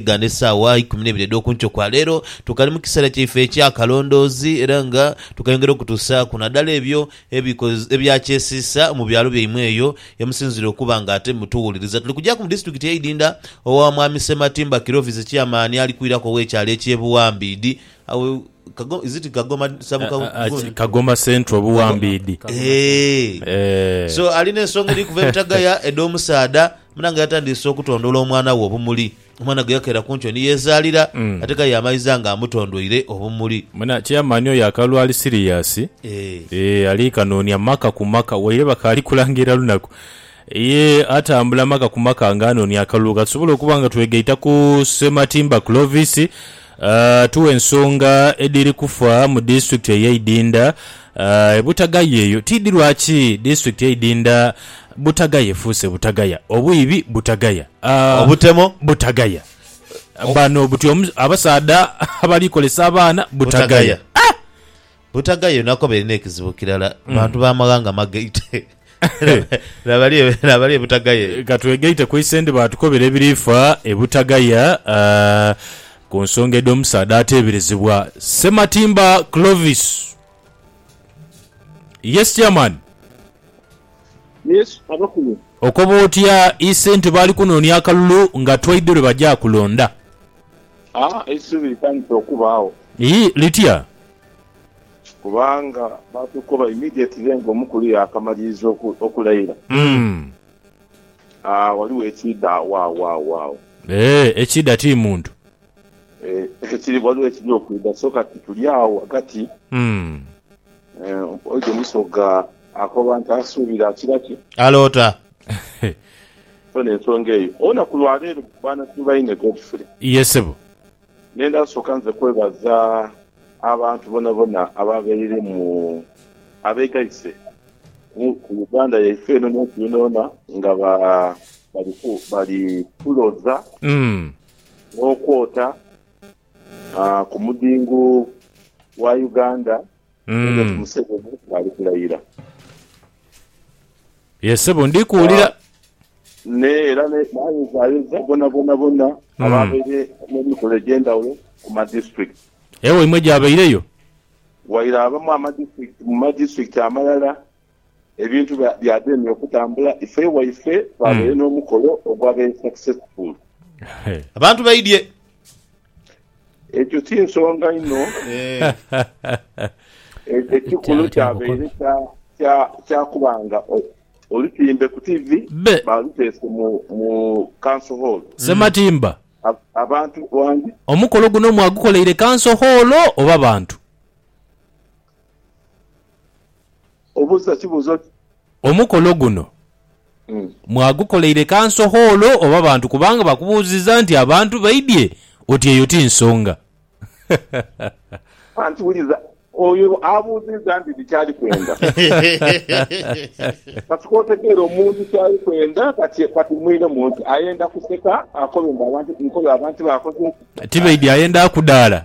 Nga n'esaawa ikumi n'eibiri edh'oku nkyo kwa leero, tukali mu kiseera kyaife eky'akalondoozi era nga tukayongera okutuusaaku nadala ebyo ebyakyesiisa mu byalo byaimwe eyo ye musinziira okuba nga ate mutuwuliriza. Tuli kugyaku mu disiturikiti y'e Idinda owa Mwami Sematimba Kirovizi Chairman ali kwiraku ow'ekyalo eky'e Buwambiidi, is it Kagoma sub-county? Kagoma Central Buwambiidi. Eehh. So ali n'ensonga edhiri kuva e Butagaya edh'omusaadha. Munange yatandiise okutondoola omwana we obumuli. Omwana gwe yakeera ku nkyo ni yeezaalira, ate ka yaamaiza nga amutondoire obumuli. Muna Chairman oyo akalu ali serious eeh ali kanonia maka ku maka waire bakaali kulangirira lunaku ye atambula maka ku maka nga anonia akalulu katusobole okuba nga twegaita ku Ssematimba Clovis. Tuwe ensonga edhiri kufa mu disitulikiti eye Idinda e Butagaya eyo tiidhi lwaki disitulikiti ye Idinda Butagaya efuuse Butagaya, obwiibi Butagaya, Obutemo Butagaya, bano buti abasaadha abali kolesa abaana Butagaya. Butaga yo nakoba erina ekizibu kirala, bantu ba maghanga magaite. Laba ali e Butagaya eyo. Ka twegaite ku Isendi baatukobera ebirifa e Butagaya ku nsonga edh'omusaadha ateeberezebwa Ssematimba Clovis. Yes Chairman. Yes abakulu. Okoba otya Isenti baali kunoonia akalulu nga twaidhi lwe bagya kulonda. A Eisubi litandise okubaagho. Ii Litya? Kubanga baatukoba immediately nga omukulu yaakamaliriza oku, okulaira. Mm. A Ghaligho ekiidha agho, agho, agho, agho. Ee, ekiidha ti muntu. Ee, ekiri, ghaligho ekiri okwidha. So kati tuli agho ghagati. Mm. Oijo Musoga akoba nti asuubira akira ki? Aloota. So n'ensonga eyo olunaku lwa leero baana tubaine Godfrey. Ye ssebo. Nenda kusooka nze kwebaza abantu bonabona abaabaire mu abeegaise ku Uganda yaife eno n'ensi yoonayoona nga bali kuloza n'okwota. ah, ku mudhingo gwa Uganda President Mm. Museveni bwali kulayira. Ye sebo ndi kuwulira. Ne era ne- nayozaayoza bonabona bona Mm. ababaire n'emikolo egy'endhawulo ku ma district. Ewaimwe gyabaireyo? Waire abamu ama district, mu ma district amalala Ebintu byademya okutambula ife waife twabaire n'omukolo ogwabaire successful. Abantu baidhye. Ekyo si nsonga inho. Ekikulu kyabaire kya kuba nga olutimbe ku tivi baaluteese mu Council Hall. Ssematimba, omukolo guno mwagukoleire Council Hall oba bantu? Obuuza kibuuzo ki? Omukolo guno mwagukoleire kanso hoolo oba bantu kubanga bakubuuziza nti abantu baidhye oti eyo ti nsonga. Anti wuliza oyo abuuziza nti biki ali kwenda. Kati k'otegeere omuntu kyali kwenda kati kati mwiremu nti ayenda kuseka akobe mbu abantu nkobe abantu bakoze ki? Tibaidhye ayenda kudhaala.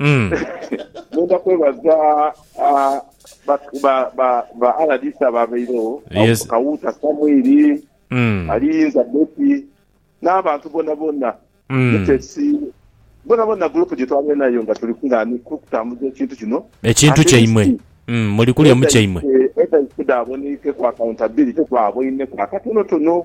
Mm. Nenda kwebaza ah, ba- ba- ba- ba RDC ababairewo Yes. Kawuuta Samwiri Mm. Aliyinza Betty n'abantu bonabona Mm. Mutesi bonabona gurupu gye twabaire nayo nga tuli kung'ani kukutambuza ekintu kino Ekintu Ate kyaimwe. isi- Mm. Muli kulya mu kyaimwe. Edda isi daaboneike ku accountability twaboineku akatonotono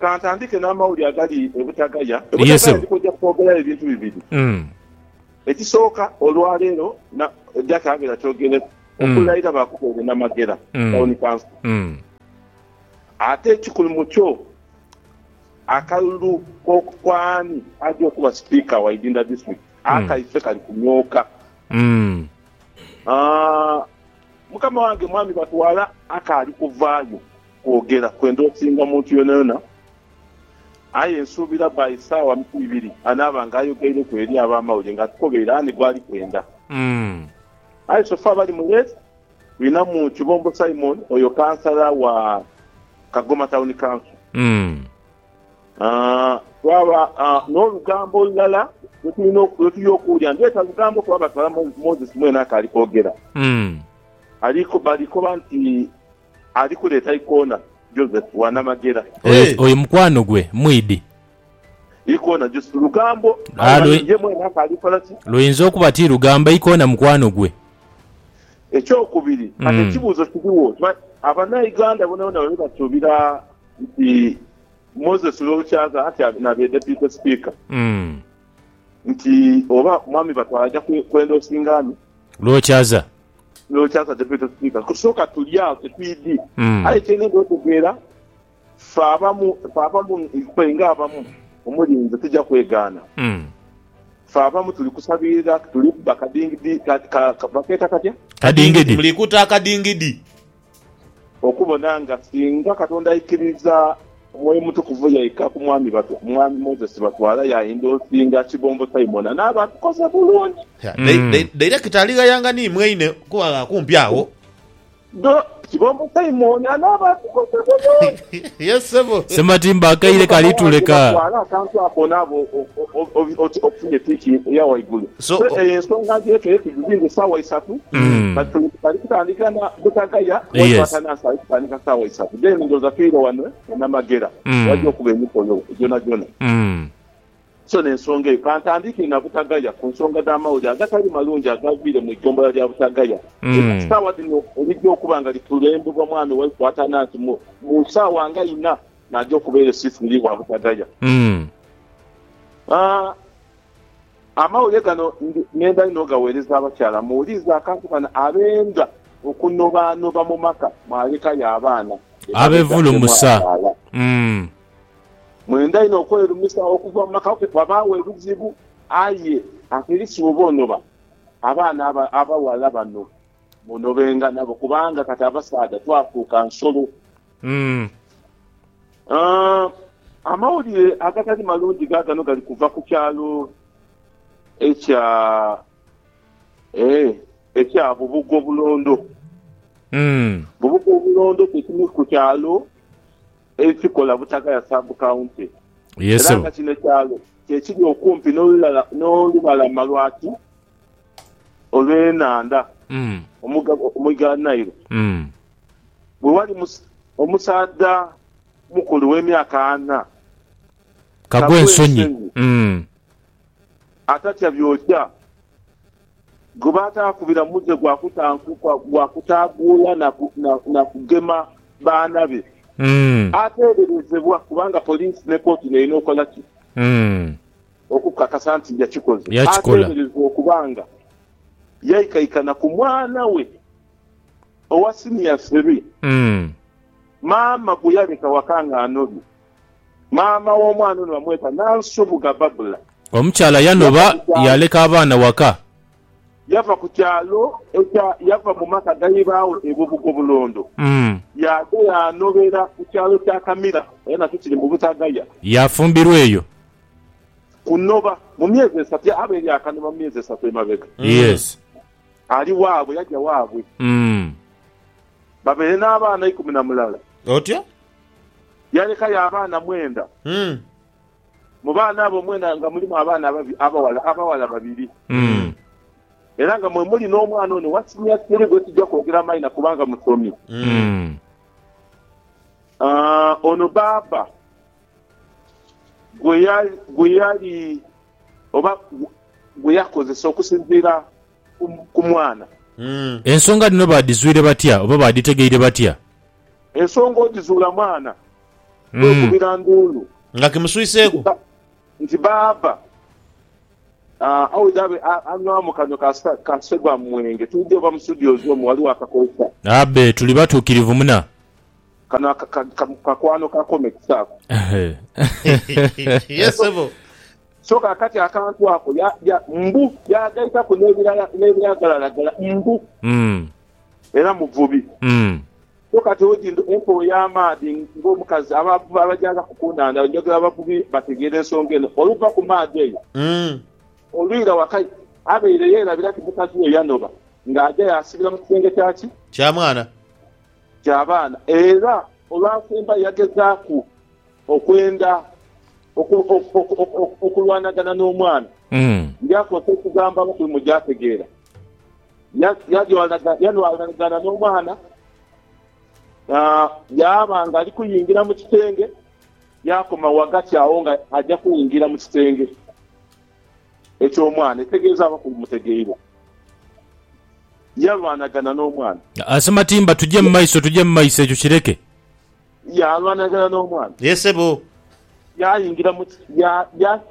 Ka ntandike n'amawulire agali e Butagaya. E Butagaya ndi kwidha kwogerayo ebintu bibiri. Ekisooka, olwa leero Jack abeera kyogereku okulayira baakubeere na Magera Town Council. Ate ekikulu mu kyo, akalulu ku ani aja okuba Sipiika wa Idinda District akaife kali kunyooka. Mukama wange Mwami batwala akaali kuvaayo. Kwogera kwenda osinga muntu yonayona, aye nsuubira by saawa ibiri anaaba nga ayogeireku eri abamawulire nga atukobeire ani gwali kwenda. Aye so far bali mu race twinamu Kibombo Simon oyo kansala wa Kagoma Town Council, twaba nolugambo olulala lwetuli okuwulira, ndheta lugambo kuba batwala Moses mwene akaali kwogera, bali koba nti Ali kuleeta ikoona Joseph wa Namagera. Oyo, Eeh! oyo mukwano gwe mwidhi. Ikoona Joseph lugambo. Aye Ah, ghano lwe- ye mwene akaali kola ki? Luyinza okuba ti lugambo ikoona mukwano gwe. Ekyokubiri, kati Mm. ekibuuzo kirigho, okimanyi Abanauganda bonabona baali basuubira nti Moses Lwolukyaza anti a- nabe Deputy Speaker Mm. nti oba Mwami Batwala aja kwe- kwendoosinga ani? Lwokyaza. no kyansa kyefe tokisikiriza kusooka tuli agho ketwidhi aye kyenenga otegeera ffe abamu ffe abamu ffe nga abamu omuli nze tija kwegaana ffe abamu tuli kusabirira tuli kuba kadingidi ka, ka, ka, bakeeta katya? Kadingidi. Tuli kuta akadingidi. Okubona nga singa Katonda aikiriza Mwoyo Mutukuvu yaika ku mwami batu, Mwami Moses Batwala yainda osinga Kibombo Simon anaaba atukoze bulungi. Yeah, dai- dai- dairekita alighayanga ni mwaine kuba gha kumpi agho. Dho, Kibombo Simon anaaba atukoze bulungi. Yes sebo. Ssematimba akaire kali tuleka. Twala akantu ako onaabe obe oti okufunye tiiki eya waigulu. So eyo ensonga ngyekere tugizinze saawa isatu but twali kutandika na Butagaya kuba twatanansa ali kutandika saawa isatu then ndowooza twire wano e Namagera wajja okuba emikolo gyonagyona. So n'ensonga eyo ka ntandike na Butagaya ku nsonga dh'amawulire agatali malungi agaaviire mu iggombolola lya Butagaya era ku saawa dhino erija okuba nga likulembebwa mwami waife Atanansi mu mu saawa nga ina naaja okubeera esisiri wa Butagaya. Aa Amawulire gano ndi ngenda inho ogagheereza abakyala. Muwuliize akantu kano abenda okunobaanoba mu maka mwalekayo abaana Abevulumusa. Mwenda inho okwerumisa okuva mu maka ku kwabaagho ebizibu, aye Abakristo bwebonoba abaana abaghala bano munobenga nabo kubanga kati abasaadha twafuuka nsolo. Amawulire agatali malungi gaagano gali kuva ku kyalo ekya ekya Bubuga Obulondo. Bubuga Obulondo kye kimu ku kyalo. ekikola Butagaya Sub County Yee era nga ssebo. kino kyalo kyekiri okumpi n'olulala n'olubalama lwa ki olw'enhandha Mm. omugga omugga Nile. Mm. Bwe wali mus omusaadha mukulu w'emyaka ana, Kagwensonyi. Kagwensonyi. Mm. atatya byokya. gwe bataakubira muze gwa kutankuka, gwa kutaaguula na kugema baana be, ateeberezebwa kubanga poliisi ne kooti n'erina okukola ki? Okukakasa nti yakikoze. Ateeberezebwa okuba nga yaikaikana ku mwana we owa siniya siri, maama gwe yaleka waka ng'anobye. Maama w'omwana ono bamweta Nansubuga Babula. Omukyala yanoba yaaleka abaana waka. Yava ku kyalo ekya yava mu maka ga ibaaghe e Bubugo Bulondo yaadha yaanobera ku kyalo kya Kamira era nakyo kiri mu Butagaya. Yaafumbirwa eyo. Kunoba mu myezi esatu yaaba eri akanoba mu myezi esatu emabega. Ali waabwe yaja waabwe babeere n'abaana ikumi na mulala. Otyo. Yalekayo abaana mwenda. Mu baana abo mwena nga mulimu abaana abaghala abaghala babiri. Era nga mwe muli n'omwana ono owa siniya sikulu gwe sija kwogera maina kubanga musomi. Ono baaba gwe yali oba gwe yakozesa okusinziira ku mwana. Ensonga dhino baadhizwire batya oba baadhitegeire batya? Ensonga ogizuula mwana, kwekubira nduulu. Nga kimuswiseeku. Nti baaba awe dhabe anywaamu kanhwe ka Segwa mwenge tuudhe oba mu studios omwo ghaligho akakookya. Abe tuli batuukirivu muna. Kano kakwano ka comics ako. Yes sebo. So kaakati akantu ako mbu yaagaitaku n'ebiragalalagala mbu. era muvubi. So kati oti nti okooye amaadhi ng'omukazi. Abavubi abajaazaku ku nhandha njogera abavubi bategeera ensonga eno. Oluva ku maadhi eyo olwira waka abaire yeerabira nti mukazi we yanoba ng'aja yaasibira mu kisenge kya ki? Kya mwana. Kya baana. Era olwasembayo yagezaaku okwenda okulwanagana n'omwana. Ndi akozesa ekigambo abakubi mwe gyategeera. Yalwanagana n'omwana, yaaba ng'ali kuyingira mu kisenge, yaakoma ghagati agho nga aja kwingira mu kisenge eky'omwana, etegeeza abakulu mutegeibwa. Yalwanagana n'omwana. Ase Matimba, tuje mu maiso, tuje mu maiso, ekyo kireke. Yalwanagana n'omwana. Ye sebo. Yaingira mu,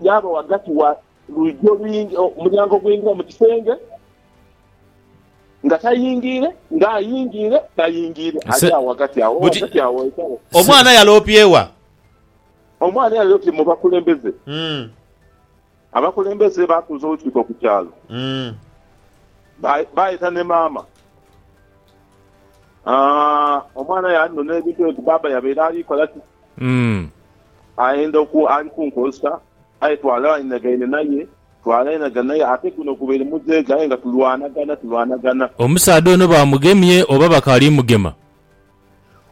yaaba ghagati wa, Lwiji olwingi, omulyango ogwingira mu kisenge, nga tayingiire, nga ayingiire, tayingiire, ali Nse, agho ghagati agho, buti, ghagati agho ghekale. se, Omwana yaloopye wa? Omwana yaloopye mu bakulembeze. mm, Abakulembeze baatuuza olukiiko ku kyalo. mm. Ba, baayeta ni maama. Aa, omwana yaalinona ebintu ebyo nti baaba yabaire ali kola ki. mm. Ayenda okwo ali kunkozesa, aye twalainagaine naye, twalainagana naye ate guno gubaire muzeega aye nga tulwanagana, tulwanagana. Omusaadha ono baamugemye oba bakaali mugema?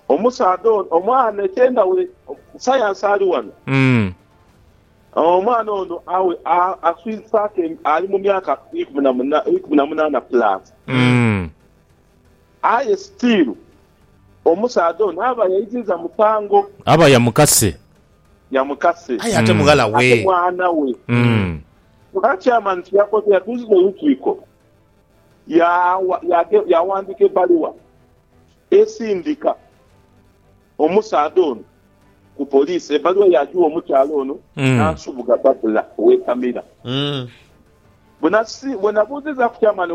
Omusaadha ono, omwana eky'endhawulo, sayansi ali wano. Omwana ono awe aswiisaku, ali mu myaka ikumi na munaana pulaasi. Aye sitiiru omusaadha ono aba yaiziza musango. Aba yamukase. Yamukase. Aye ate mughala we. Ate mwana we. Nga Chairman kye yakoze yatuuziza olukiiko yawandiika ebbaluwa esindika. Omusaadha ono ku poliisi ebbaluwa yaagigha omukyala ono n'ansubuga Babula ow'e Kamira. Bwe nabuuzizaaku kyamaani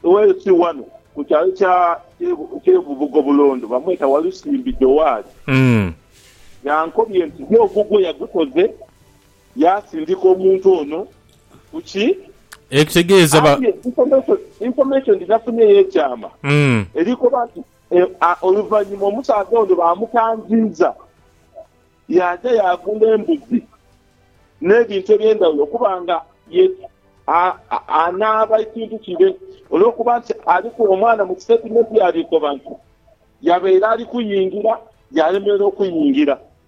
oweeyo si wano ku kyalo ky'e Bubugo Bulondo bamweta Walusimbi Jowaali, yankobye nti ye ogugwe yagukoze yaasindika omuntu ono ku ki? Aye information gye nafunye ey'ekyama eri koba nti Oluvannyuma omusaadha ono baamukangiiza yaaja yaagula embuzi n'ebintu eby'endhaghulo okuba nga ye anaaba ekintu kire. Olw'okuba nti aliku omwana mu kisitatimenti yaabikoba nti yabaire ali kuyingira yaalemererwa okuyingira.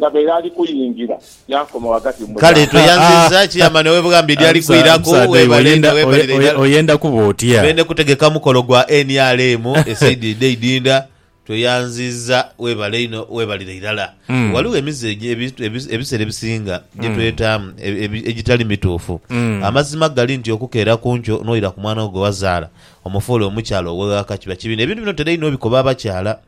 Yabaire ali kuyingira, yaakoma ghagati mu mulyango. Kale tweyanziza kiyama nawe bwami dyali kwiraku webale nga webalira irala. Oyenda kuba otya? Bene kutegeka mukolo gwa nrm esaidi edho eidinda tweyanziza webale inho webalira irala. Ghaligho emize ebisera ebisinga gyetwetamu egitali mituufu. Amazima gali nti okukeera kunkyo noira ku mwana wo gwewazaala omufuule omukyala oweghaka kiba kibi nebintu bino ntera inho obikoba abakyala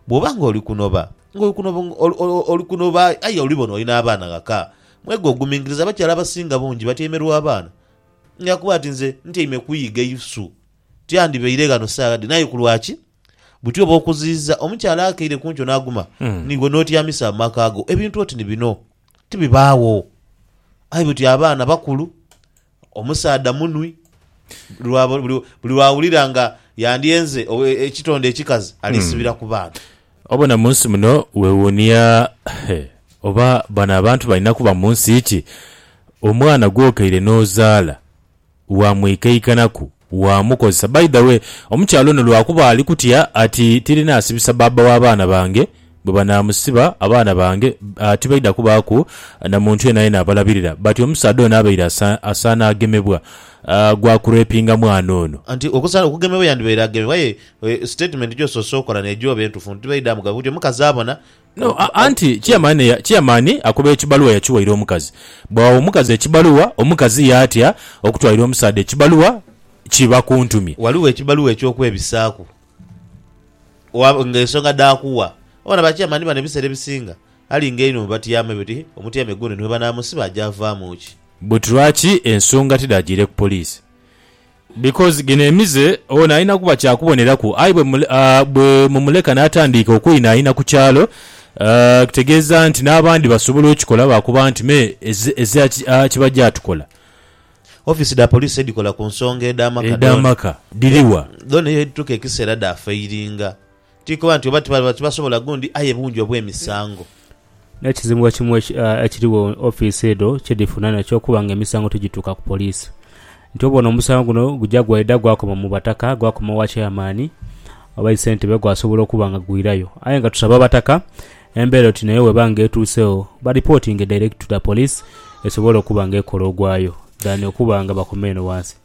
bwoba nga oli kunoba. Ng'oli kunoba aye olibona oli n'abaana ghaka. Mweghe ogumingiriza, abakyala abasinga bungi batyaime lwa baana. Nga kuba ti nze ntyaime kuyiga isu, tyandibaire ghano saagha dhino. Aye ku lwaki? Buti oba okuziiza omukyala akeire ku nkyo n'aguma, niiwe n'otyamisa amaka go. Ebintu oti ni bino tibibaagho. Aye buti abaana bakulu, Omusaadha munwi, buli lw'awulira nga yandyenze ekitonde ekikazi aliisibira ku baana. Obona mu nsi muno weewuunia oba bano abantu balina kuba mu nsi ki? Omwana gw'okeire n'ozaala waamwikaikanaku? waamukozesa. By the way, omukyala ono lwakuba ali kutya ati tirinaasibisa bbaabba w'abaana bange, bwe banaamusiba abaana bange tibaidha kubaaku na muntu yenayena abalabirira but omusaadha ono abaire asaana agemebwa gwa kurepinga mwana ono. Nti okusaana okugemebwa yandibaire agemebwa aye sitatimenti gy'osoose okola n'egyo oba entufu nti tibaidha mugaba kutyo. Omukazi abona No, a- anti chairman, eya- chairman akuba ekibaluwa yakiwaire omukazi. Bwagha omukazi ekibaluwa, omukazi yaatya okutwalira omusaadha ekibaluwa kiba kuntumye. Ghaligho ekibaluwa eky'okwebisaaku wa- ng'ensonga dh'akuwa. Obona ba chairman bano ebiseera ebisinga alinga einho mu batyame be oti omutyame guno ni bwe banaamusiba aja avaamu ki? But lwaki ensonga tidhagyiire ku poliisi? Because gino emize ono alina kuba kya kuboneraku aye bwe mumuleka n'atandiika okweinhainha ku kyalo kitegeeza nti n'abandi basobola okikola baakuba nti me ezira kiba gyatukola. Ofiisi dha poliisi edhikola ku nsonga edh'amaka dhona ye dhituuka ekiseera dhaafairinga. Tikoba nti oba tibasobola gundi aye bungi obw'emisango. N'ekizibu ekimu ekirigho ofiisi edho kye dhifuna nakyo kuba ng'emisango tigituuka ku poliisi. Nti obwo ono omusango guno guja gwaidha gwakoma mu bataka, gwakoma owa cheyamaani oba yi ssentebe gwasobola okuba nga gwirayo. Aye nga tusaba abataka embeera oti nayo bw'eba nga etuuseegho balipotinge direct to the police esobole okuba nga ekola ogwayo than okuba nga bakoma eno ghansi.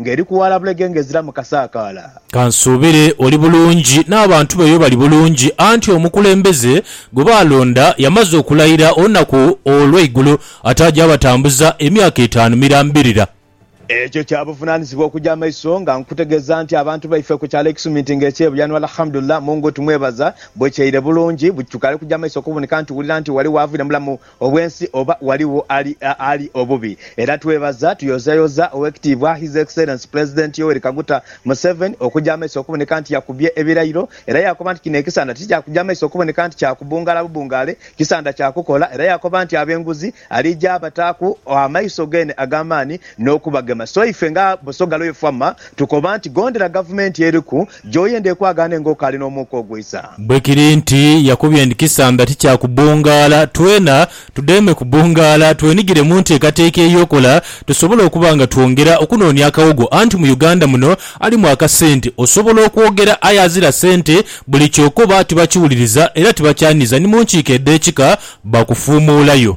Ng'eri ku waala bulege ng'eziramu kasaakaala. Ka nsuubire oli bulungi, n'abantu bo eyo bali bulungi, anti omukulembeze gwe baalonda yamaze okulayira olunaku olw'eigulo ataaja abatambuza emyaka etaanu mirambirira. Ekyo kya buvunaanyizibwa okuja amaiso nga nkutegeeza nti abantu baife ku kyalo e Kisuminti ng'ekye Buyano Alhamdulillah Mungu tumwebaza bwekyaire bulungi, bwekitukaire okuja amaiso okuboneka nti wulira nti wali waavire mulamu obw'ensi oba ghaligho ali obubi era twebaza tuyozayoza Owekitiibwa His Excellence Pulezidenti Yoweri Kaguta Museveni okuja amaiso okuboneka nti yakubye ebirairo era yakoba nti kino ekisanda tikyakuja maiso okuboneka nti kya kubungala bubungale kisanda kya kukola era yakoba nti ab'enguzi alija abataaku amaiso gene ag'amaani n'okubagema so ife nga Busoga Royal Famma tukoba nti gondera gavumenti eriku Gy'oyenda ekwagaane ng'okaali n'omwoka ogwisa. Bwe kiri nti yakubye ndi kisamba ti kya kubungaala, twena tudheeme kubungaala twenigire mu nteekateeka ey'okola tusobole okuba nga twongera okunoonia akawogo anti mu Uganda muno alimu akasente. Osobola okwogera aye azira sente buli ky'okoba tibakiwuliriza era tibakyaniriza ni mu nkiiko edh'ekika bakufuumuulayo.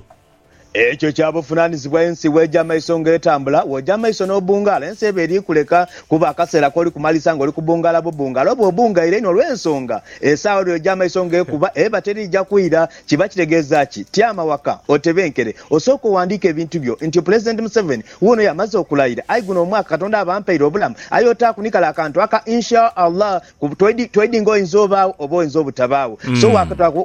Ekyo kya buvunaanyizibwa ensi bw'eja amaiso ng'etambula. Bw'oja amaiso n'obungaala, ensi eba eri kuleka kuba akaseera k'oli kumaliriza ng'oli kubungaala bubungaala. Oba obungaire inho olw'ensonga esaawa lw'eja amaiso ng'ekuba, eba teriija kwira. Kiba kitegeeza ki? Tyama waka, otebenkere, osooke owandiike ebintu byo. Ntyo Pulezidenti Museveni wuuno y'amaze okulayira, Aye guno omwaka Katonda aba ampaire obulamu, aye otaaku ni kale akantu aka Insha Allah. Tweidinga oyinza obaagho oba oyinza obutabaagho. So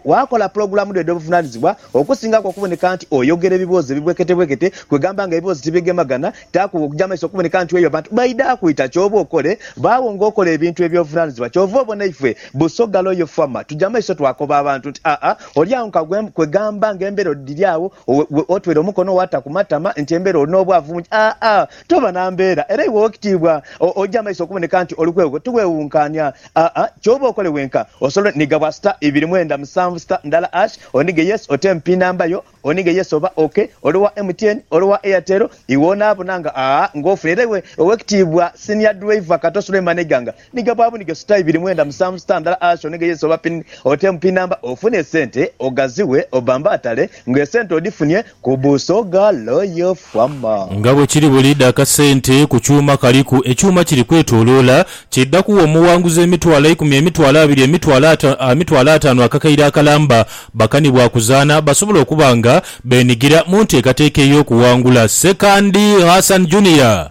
waakola pulogulaamu dho edh'obuvunaanyizibwa okusingaku okuboneka nti oyogera ebiboozi ebibweketebwekete kwegamba nga ebiboozi tibigemagana, taaku oja mu maiso okuboneka nti weeyo abantu baidha kwita ky'oba okole baagho ng'okola ebintu eby'obuvunaanyizibwa. Kyova obona ife Busoga Loyal Fama tuja mu maiso twakoba abantu nti aa oli agho nka gwe kwegamba ng'embeera dhiri agho otwere omukono waata ku matama nti embeera oli n'obwavu bungi aa. Toba na mbeera, era iwe ow'ekitiibwa oja amaiso okuboneka nti oli kwegho. Tiweewunkaania. Aa, ky'oba okole wenka, osobola onhiga bwa sita ibiri mwenda musanvu sita ndala ash, onhige yes ote mu pin number yo, onhige yes oba ok, oli owa MTN, oli owa Airtel, iwe onaabona nga, aa, nga ofuna. Era iwe ow'ekitiibwa Senior Driver Kato Suleiman Iganga, Ni ga bwabu ni ga suta ibiri mwenda musanvu suta ndala asho ni ga yesi oba pin otem pin number ofune esente ogaziwe obambatale nga esente odifunye ku buso ga loyo fama. Nga bwe kiri buli dha kasente ku kyuma kaliku ekyuma kiri kwetoloola, kidha kugha omuwanguzi emitwalo eikumi, emitwalo abiri, emitwalo ata, emitwalo ataanu akakaire akalamba. Bakani bwa kuzaana basobola okuba nga beenigira mu nteekateeka ey'okuwangula. Ssekandi Hassan Junior.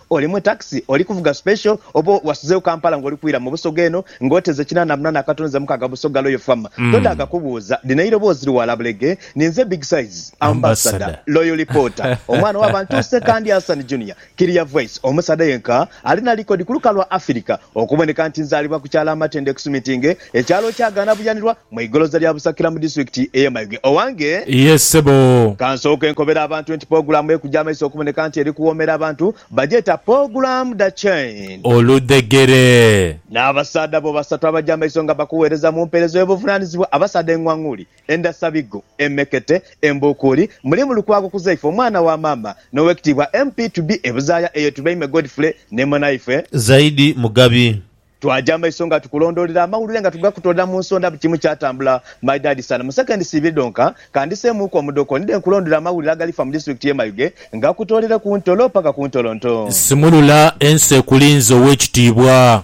Oli mu takisi, oli kuvuga special, oba wasuzeewo Kampala ng'oli kwira mu Busoga eno ng'oteze kinaana munana akatono ze mukaga Busoga Loyal Farm, todaaga kubuuza. Lino eiroboozi liwaala bulege, ninze Big Size, Ambassador, Loyal Reporter, omwana wa bantu Ssekandi Hassan Junior, Clear Voice, omusaadha yenka ali na likodi ku luka lwa Afirika okuboneka nti nzaalibwa ku kyalo Amatendo Ekusumitinge, Ekyalo kya Gaanabuyanirwa mu igoloza lya Busakira mu disitulikiti eye Mayuge. Owange. Yee ssebo. Kansooke nkobere abantu nti pogulaamu ekuja amaiso okuboneka nti eri kuwoomera abantu bagyeta Pogulaamu da Chain. Oludhegere. N'abasaadha bo basatu abaja amaiso nga bakuweereza mu mpeereza ey'obuvunanizibwa, abasaadha eng'wang'uuli, endhasabigo, emmekete, embuukuuli, mulimu Lukwago Kuzaifa omwana wa maama n'Owekitiibwa MP to be e Buzaaya eye Tubeime Godfrey ne Mwanaifwe. Zaidi Mugabi. Twaja maiso nga tukulondolera amawulire nga tugakutoolera mu nsonda buli kimu kyatambula my dad sana mu seconds ibiri dhonka kandiseemuuku omudhooko ndidhe nkulondolere amawulire agalifa mu district ye Mayuge ngakutoolere ku ntolo paka ku ntolo nto. Nsimulula ensi ekulinze owekitiibwa.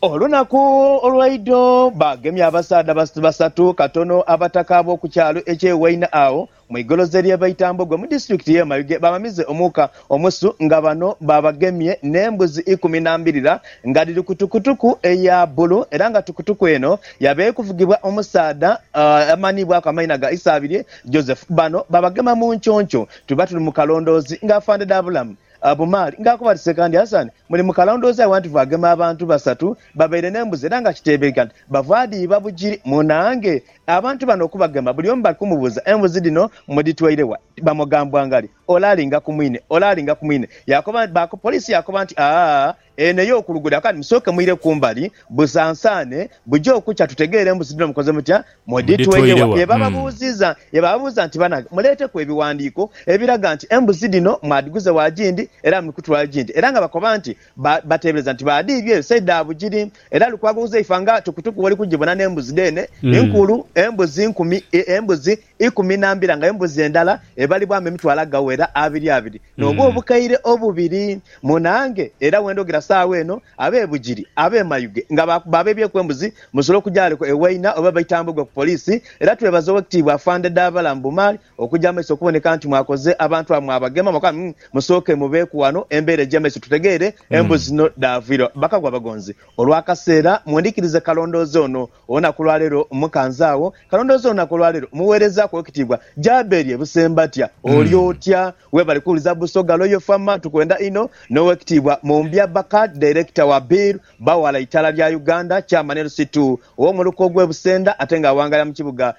Olunaku olwaidho baagemya abasaadha basatu katono abataka ab'oku kyalo eky'e Waina agho Mu igoloze lye Baitambogwe mu disitulikiti ye Mayuge bamamize omuuka omusu nga bano babagemye ne mbuzi ikumi na mbirira nga dhiri ku tukutuku eya bulu era nga tukutuku eno yabaire eri kuvugibwa omusaadha amanhibwaku amaina ga Isaabirye Joseph. Bano babagema mu nconco tuba tuli mu kalondoozi nga Afande Dabulamu Bumaali nga akuba ati Sekandi Hassan muli mu kalondoozi awantu vwagema abantu basatu Babaire n'embuzi era nga kiteebeika nti bava dhi iba Bugiri. Munaange! Abantu bano okubagema buli omu bali kumubuuza embuzi dhino mudhitwaire wa? Bamugambwangali ole alinga ku mwine, ole alinga ku mwine. Yaakoba, baakoba, poliisi yaakoba nti, Aa, eno ey'okulugudha kale musooke mwire ku mbali busansaane, buje okukya tutegeere embuzi dhino mukoze mutya, mudhitwaire wa? Ye bababuuziza, ye bababuuza nti, Banange, muleeteku ebiwandiiko ebiraga nti embuzi dhino mwadhiguze wa gindi era muli kutwala gindi? Era nga bakoba nti, Ba, bateebereza nti baadhiibye ense dha Bugiri. Era Lukwago Uzaifa nga tukutuku oli kugibona n'embuzi dheene nkulu, embuzi nkumi, e, embuzi ikumi na mbira, nga embuzi endala ebalibwamu emitwalo agawera abiri abiri, n'obwo obukaire obubiri. Munaange, era we ndhogira saagho eno, ab'e Bugiri, ab'e Mayuge, nga baakuba abeebyeku embuzi, musobola okujaaleku e Waina oba e Baitambwe gwe ku Poliisi, era twebaze Owekitiibwa Afande Dhaabalamu Bumaali Okuja mumaiso okuboneka nti mwakoze abantu abo mwabagema mwaka umm musooke mubeeku wano embeera egya maiso tutegeere embuzi zino dhaavwira bakagwa abagonzi olwakaseera mwendhikirize kalondoozi ono olunaku lwaleero mukanzaagho kalondoozi olunaku olwaleero muweerezaaku owekitiibwa Jaberie Busembatya oli otya webale kuwuliza Busoga Royal Fama tukwenda inho n'owekitiibwa Mumbya Bakad Director wa Bill Bawala Itaala lya Uganda Chairman LC Two owomuluka ogw'e Busenda ate nga awangalira mukibuga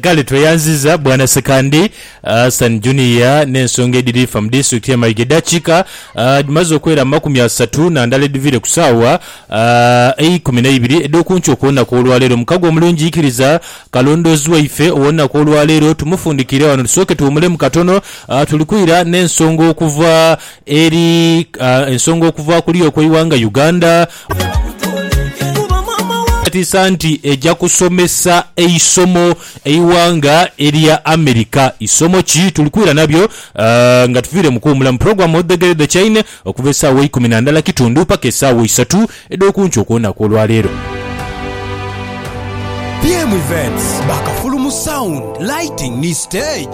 Kale tweyanziza Bwana Sekandi Hassan Junior n'ensonga edhiri fa mu disitulikiti ye Mayiga edhakika dhimaze okwera mu makumi asatu na ndala edhiviire ku saawa eikumi na ibiri edhokunkyo okwolunaku olwaleero. Mukago omulungi ikiriza kalondoozi waife owonunaku olwaleero tumufundikire wano tusooke tuwumulemu katono. Tuli kwira n'ensonga okuva eri ensonga okuva kuli okweiwanga Uganda. Etiisa nti eja kusomesa eisomo eighanga erya America. Isomo ki? Tuli kwira nabyo nga tuviire mu kuwumula mu pulogulaamu Odhegere The Chain okuva esaawa eikumi na ndhala kitundu paka esaawa isatu edh'okunkyo okw'olunaku olwa leero. BM Events ba Kafulu mu sound, lighting ni stage.